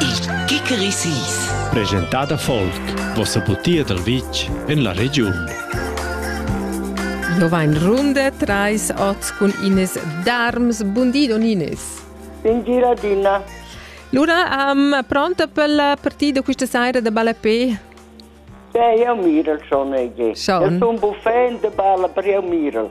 Il Kikerisis. Presentada folk, vossa butia dal vitg en la regiun. Lo vain runde trais ots cun Ines Darms. Bundi, don Ines. Buongiorno, Dina. Lura um, pronta per la partita questa sera de Balapé? Beh, io Mirel schon, Ege. Schon? Io sono buffet de Balla per io Mirel.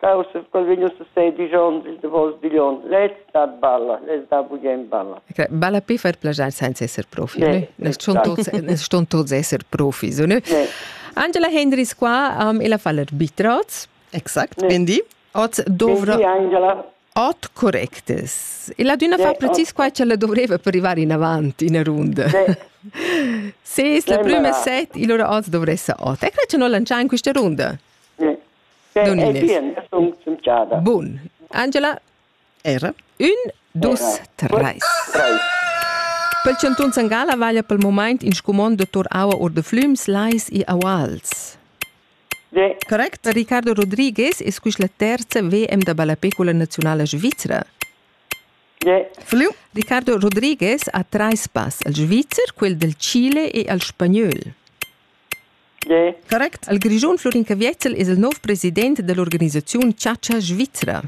Causa quel vegn a sei digl onns il davos digl onn. Lez dat balla, lez dat bugen balla. Balla per far plagiar senza esser profi, ne? Nes ston tots, nes ston tots esser profi, so, ne? Angela Hendris qua um, e la fa l'arbitraz, exakt, ne. bendi. Oz dovra... Bendi, Angela. Ot correctes. E la duna fa precis qua che la dovreva per arrivare in avanti in runda. Se es la prima set, il ora oz dovressa ot. E che non lanciare in questa runda? Bun. Angela? Era? Ün, dus, treis. Pel chantun San Gala vaglia pel moment in scumond de Tor Aua or de Flüms, Lais e Auals. De. Correct? Ricardo Rodriguez es quis la terza VM de ballapecula nazionala svizzera. De. Flüm. Ricardo Rodriguez ha trais pass al Svizzer, quel del Chile e al Spagnol. Correct. Il Grischun Flurin Caviezel es il nouv president da l'organisaziun Chatscha Svizra.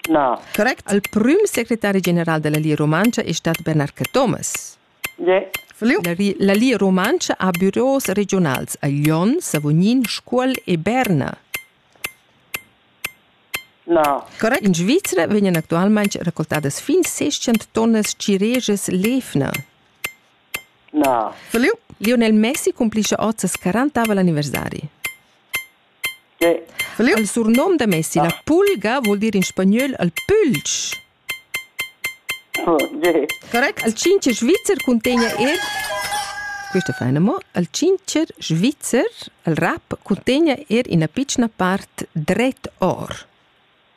Na. Correct. Il prüm secretari general da la Lia Rumantscha es stat Bernard Cathomas. Yeah. La Lia Rumantscha ha büros regiunals a Lyon, Savognin, Scuol e Berna. Na. Correct. In Svizra vegnan actualmaing raccoltadas fin 600 tonnas cirejas lefna. Na. Da liug? Lionel Messi cumplischa oz ses quarantavel anniversari. Che? Da liug? Il surnum da Messi, ah. la pulga, vul dir in spagnol il pulch. Okay. Correct. Il cincer svizzer cuntegna er questo è fein mo, il cincer svizzer, il rap, cuntegna er ina piccola part dret or.